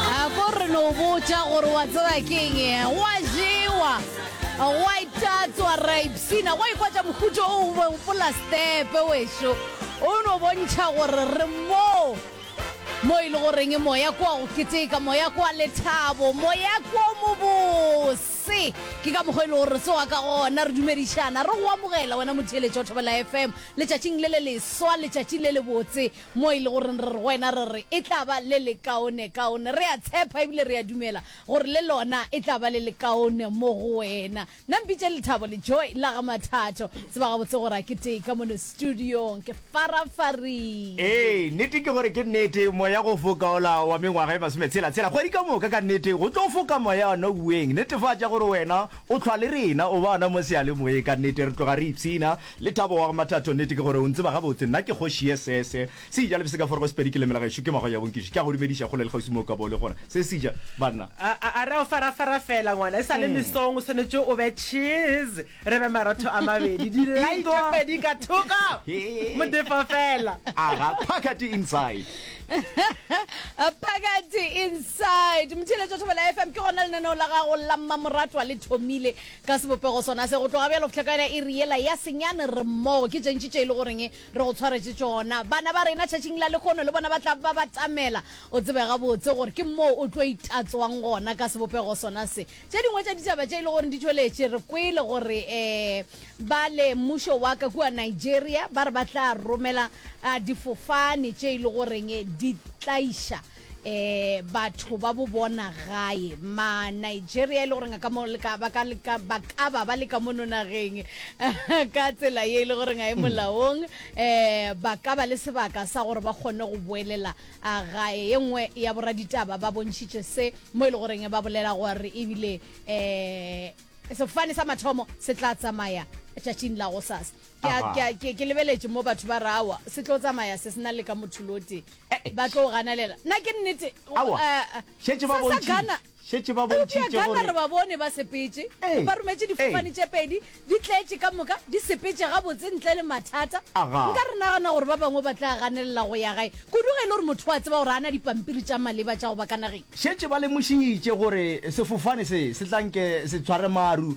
a ko re no botša gore wa tseba keng wa jewa wa itatswa ra ipsina wa ikwa tša mokhutšo o bopola stepe wešo o no bontšha gore re moo mo e le goreng moya kwa go keteka moya kwa lethabo moya kwa mobose ke ka mokgwa e le gore tsoa ka gona re dumedišana re go amogela wena motheletšo thobela fm letšatšing le le leswa letšatši le le botse Mo e le goreng re re go wena, re re, e tla ba le lekaonekaone. Re a tshepa e bile re a dumela gore le lona e tla ba le lekaone mo go wena. Nna mpitše Lethabo le Joy la ga Mathato. Tseba gabotse gore a ke tee ka mono studiong. Ke farafarile. Ee, nnete ke gore ke nnete, moya go foka ola wa mengwaga e masometshela-tshela. Kgwedi ka moka ka nnete go tlo foka moya wa Nouweng. Netefatša gore wena o hlwa le rena, o ba gona mo seyalemoyeng. Ka nnete re tloga re ipshina. Lethabo wa go Mathato, Nete ke gore o ntseba gabotse, nna ke kgoši ye se se seja le bseka forego Sepedi ke lemela gešo ke mago ya bonkiši, ke a go dumediša kgole le kgauswi mo o ka bo le gona, se seja banna. A, a, a re o farafara fela ngwana, e sa le mesong o swanetše o be cheese, re be marotho a mabedi, di lye tše pedi ka thoko, modefo fela. A ga phakati inside. Phakati inside. Mtheeletšo Thobela FM, ke gona lenaneo la gago la mmamoratwa le thomile Ka sebopego sona se, go tloga bjale go fihla ka yona iri yela ya senyane, re mmogo. Ke tše ntši tše e le goreng re go tshwaretše tšona. Bana ba rena tšatšing la lehono le bona ba tla ba batamela. O tsebe gabotse gore ke moo o tlo itatswang gona ka sebopego sona se. Tše dingwe tša ditaba tše e le goreng di tšweletše, re kwele gore ba le mmušo wa ka kua Nigeria ba re ba tla romela difofane tše e le goreng di tlaiša batho ba bo bona gae ma Nigeria e le gore ka mo leka ba ka leka ba ka ba ba leka mo nonageng ka tsela ye e le gore ga e molaong eh ba ka ba le sebaka sa gore ba kgone go boelela a gae ye nngwe ya boraditaba ba bontšhitše se mo e le goreng ba bolela gore ebile eh sefane sa mathomo se tla tsamaya tšatšing la go sasa Ke a, ke a, ke, ke lebeletše mo batho ba re, Aowa, se tlo tsamaya se se na le ka motholo o tee. Eh-eh. Ba tlo o ganalela. Na ke nnete? Aowa. Eh, eh. Šetše ba Sa- sa bontši- Ghana. šetše ba Eupša bontšhitše Ghana gore- re ba bone ba sepetše. Ee, Ba rometše difofane ee. tše pedi, di tletše ka moka, di sepetše gabotse ntle le mathata. Aga. Nka re nagana gore ba bangwe ba tla ganelela go ya gae, kudu ge e le gore motho o a tseba gore a na dipampiri tša maleba tša go ba ka nageng. Šetše ba lemošitše gore sefofane se se tla nke se tshware maru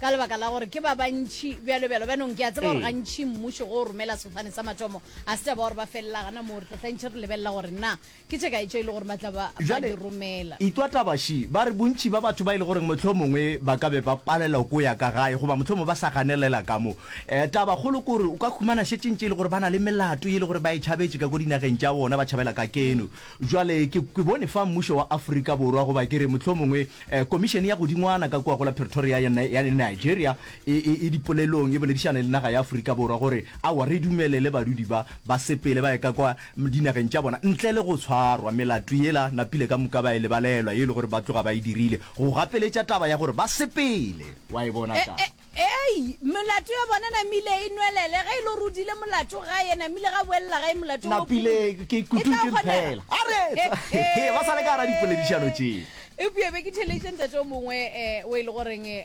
ka lebaka la gore ke ba bantši bjalo bjalo bjanong ke a tseba gore gantši mmušo go romela sefane sa mathomo a se taba gore ba felela gana moo re tlatlantšhe re lebelela gore na ke tše kae tše e le gore ba tla ba ba di romela itwa tabashi ba re bontši ba batho ba e le goreng mohlomongwe ba ka be ba palela ko ya ka gae goba mohlomongwe ba sa ganelela ka mo um taba kgolo ke gore o ka khumana šetšeng tše e le gore ba na le melato e le gore ba e tšhabetše ka ko dinageng tša bona ba tšhabela ka keno Bjale, ke, ke bone fa mmušo wa Afrika Borwa, goba ke re, mohlomongwe, eh, komišene ya godingwana ka kua go la Pretoria ya, ya, ya Nigeria, e, e, e dipolelong, e boledišane le naga ya Afrika Borwa, gore, Aowa, re dumelele badudi ba, ba sepele ba ye ka kwa dinageng tša bona, ntle le go tshwarwa. Melato yela, napile ka moka ba e lebalelwa, ye e le gore ba tloga ba e dirile, go gapeletša taba ya gore ba sepele. Wa e bona ka. Eyi, melato ya bona namile e nwelele, ge e le gore o dile molato gae, namile ga boelela gae molato wo Napile pukung. ke E tla ikututše kgonega. fela. A re He, ba sa le ka gara dipoledišano tše. Eupša be ke theleditše ntate o mongwe eh, o e le goreng eh,